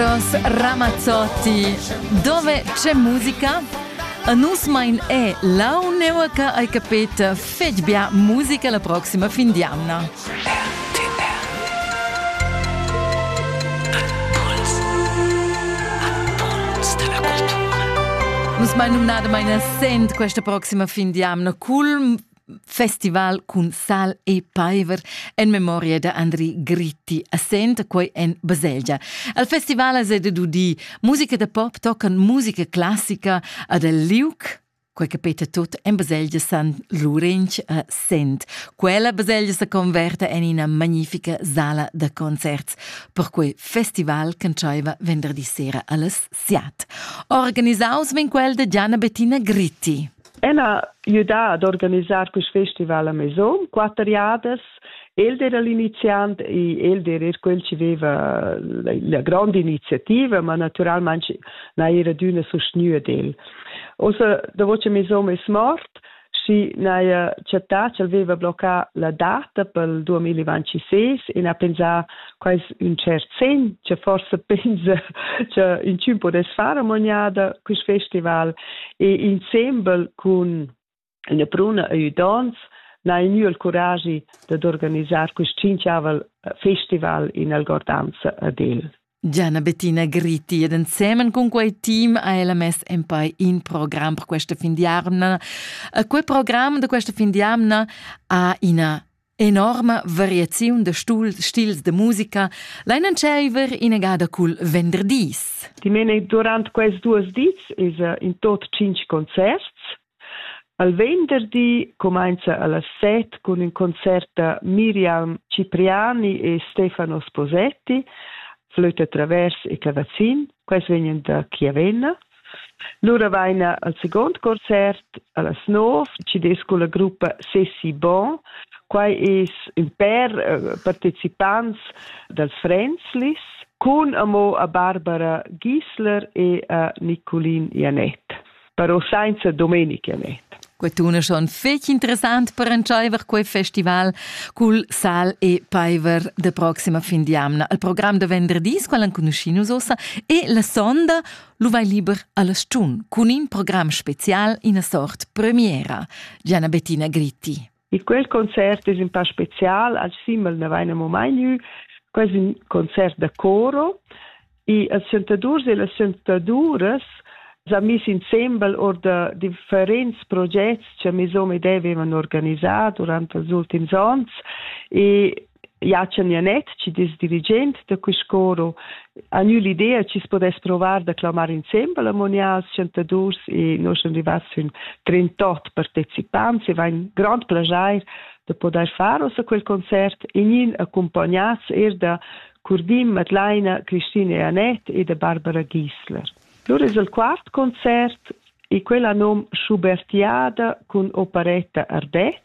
Carlos Ramazzotti. Dove c'è musica? Nus mein è la uneva che hai capito fetg bia musica la prossima fin di Anna. Nus mai numnada meine Sent questa prossima fin di Anna cul festival cun sal e paiver en memoria da Andri Gritti a Sent, quei en Baselgia. Al festival es de dudi musica da pop tocan musica classica ad el liuc quei che peta tot en baselgia San Lurench a Sent. Quella baselgia se converta en ina magnifica sala da concerts, per quei festival canzaiva venderdi sera alles siat. Organisaus vin quel de Gianna Bettina Gritti. Ella jüdà ad organisar quist festival a Maison, quatter jadas. El d'eira l'iniziant e el d'eira eir quel chi veva la, la gronda iniziativa, ma natüralmaing n'haja adüna sustgnü ad el. Ossa, davo cha Maison es mort, schi n'haja chattà ch'el veva bloccà la data pel 2026 e n'ha pensà quai es ün tschert segn cha forsa pensa cha inchün pudess far amoniada quist festival e insembel cun üna bruna e udonts n'ha i gnü il curagi dad organisar quist tschinchiavel eh, festival in algordanza ad el. Gianna Bettina Gritti ed ensemen cun quei team ha ella mess en poi in program per questa fin di amna. E quel program de questa fin di amna ha ina Enorma variaziun da stul, stils da musica lain entscheiver inegada cul venderdis. Dimene durant quels duos dis esa in tot tschinch concerts. Al venderdi comincia alla set con ün concert da Miriam Cipriani e Stefano Sposetti, Flöte Travers e Cavazzin, quels vegnan da Chiavenna. Lura vaina al seguond concert a las nov, chi'd es culla gruppa Sessi Bon. Quai es ün pèr eh, partecipants dals Fränzlis cun amo a Barbara Giesler e a Nicolin Janett, però sainza Domenic Janett. Quest'una schon fetg interessant per entscheiver quei festival cul Sal e Paiver de proxima fin d'jamna. Il program de venderdis, qual enconuschin nus ossa, e la sonda lu vai liber alla stun cun in program special ina sort premiera Gianna Bettina Gritti. Il quel concert es un pa special, al Simmel ne vaina mo mai gnü, quel es un concert da coro e els sentadurs e las sentaduras s'ha mis insembel or da differents progets che mes hom e deve avevan organisà durant els ultims ons e Jachen Janet, chi es dirigent da quist coro, ha gnü l'idea chi's podess provar da clamar insembel ammonias chantadurs e noi sun rivats sün 38 partecipants e vain grand plaschair da podair far ossa quel concert e gnin accompagnats eir da Curdim, Madlaina, Christine e Annette e da Barbara Giesler. Lur es il quart concert e quella nom Schubertiada cun operetta Ardez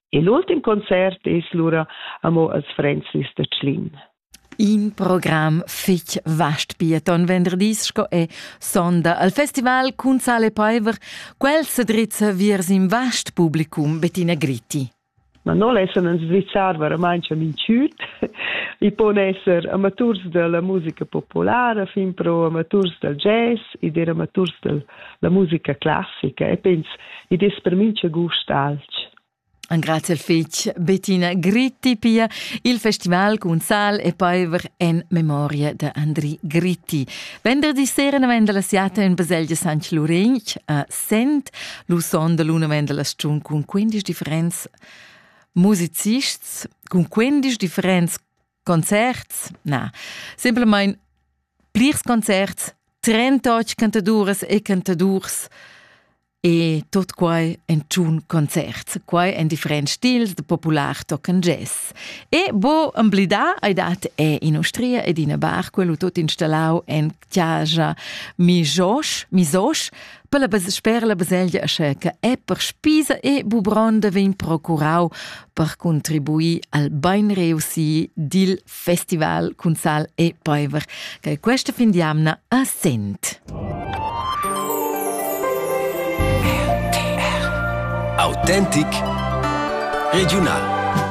E l'ultim concert es lura amo als Fränzlis da Tschlin. In program fich vast pieton venderdis sco è sonda al festival cun Sale Paiver, quel se drizza viers in vast publicum Bettina Gritti. Ma non lessan ins drizzar verament minchüt. I pon esser amaturs della musica populara, fin pro amaturs del jazz, ed er amaturs del la musica classica e pens id es per mincha gust alch. Grazie fich Bettina Gritti pia il festival cun sal e peiver en memoria da Andri Gritti. Venderdi sera ne venda la siata in baselgia San Lurin a Sent. Lu sonda l'una venda la stun cun 15 differenz musicists, cun 15 differenz Concerts? Na, simplamain plirs concerts, trentotg cantaduras e cantadurs e tot quai en tschun concerts. Quai en differents stils, da popular toc en jazz. E bo emblidà hai dat è in Ustria ed ina bar, quello tot installau en giaja mi josh mi sosch per la sper la baselgia sche che è per spisa e bubronda vegn procurau per contribuir al bein reusi dil festival Cunzal e Peiver che questa fin di amna a Sent. RTR Autentic Regional